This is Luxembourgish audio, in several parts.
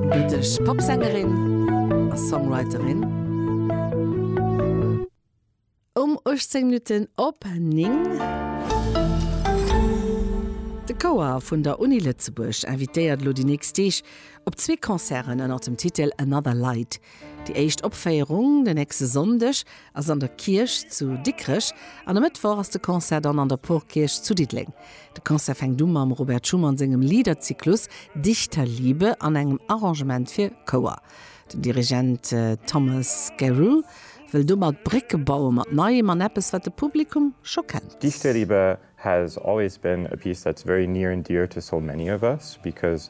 Brittësch Popsängerin a Songwriterin. Um 18 Minutten op 9. De Chouer vun der Uni Lëtzebuerg invitéiert elo déi nächst Deeg op zwee Concerten ënnert dem Titel Another Light. Déi éischt Opféierung den nächste Sonndeg ass an der Kierch zu Dikrech an e Mëttwoch ass de Concert dann an der Porkierch zu Diddeleng. De Concert fänkt u mam Robert Schumann sengem Liederzyklus Dichterliebe an engem Arrangement fir Chouer. Den Dirigent Thomas Scarrow wëll domat Brécke baue mat Neiem an eppes, wat de Publikum scho kennt. Dichterliebe has always been a piece that's very near and dear to so many of us because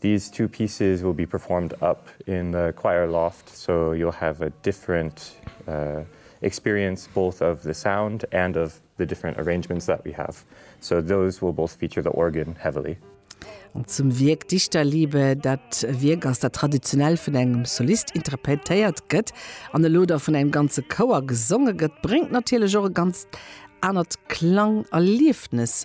These two pieces will be performed up in the choir loft so you'll have a different experience both of the sound and of the different arrangements that we have. So those will both feature the organ heavily. An zum Wierk Dichterliebe, dat e Wierk ass, dat traditionell vun engem Solist interpretéiert gëtt an elo da vun engem ganze Chouer gesonge gëtt, bréngt natierlech och e ganzt anert Klangerliefnes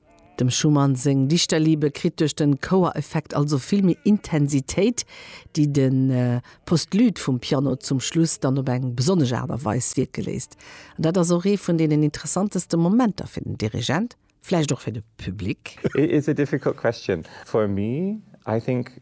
Dem Schumann seng Dichterliebe kritt duerch de Chouereffekt also vill méi Intensitéit, déi de Postlude vum Piano zum Schluss dann op eng besonnesch Aart a Weis wierke léisst. An dat ass och ee vun deenen interessanteste Momenter fir den Dirigent, vläicht och fir de Public. Is it a difficult question? For me, I think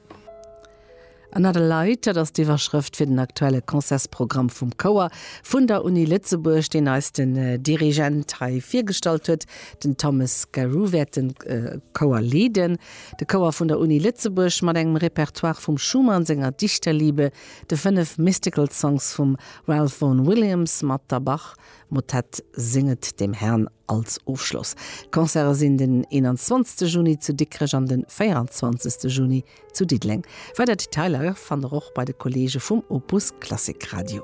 Another Light, dat ass d'Iwwerschrëft fir den aktuelle Concertsprogramm vum Chouer vun der Uni Lëtzebuerg, deen eis den Dirigent hei virgestallt huet. Den Thomas Garreau wäert de Chouer leeden. De Chouer vun der Uni Lëtzebuerg mat engem Repertoire vum Schumann senger Dichterliebe, de fënnef Mystical Songs vum Ralph Vaughan Williams mat der Bach-Motett Singet dem Herrn. Als Ofschloss, D'Concerte sinn den 21 Juni zu Dikrech an den 24 Juni zu Diddeleng. Weider Detailer fannt der och bei de Kolleege vum Opus Klassik Radio.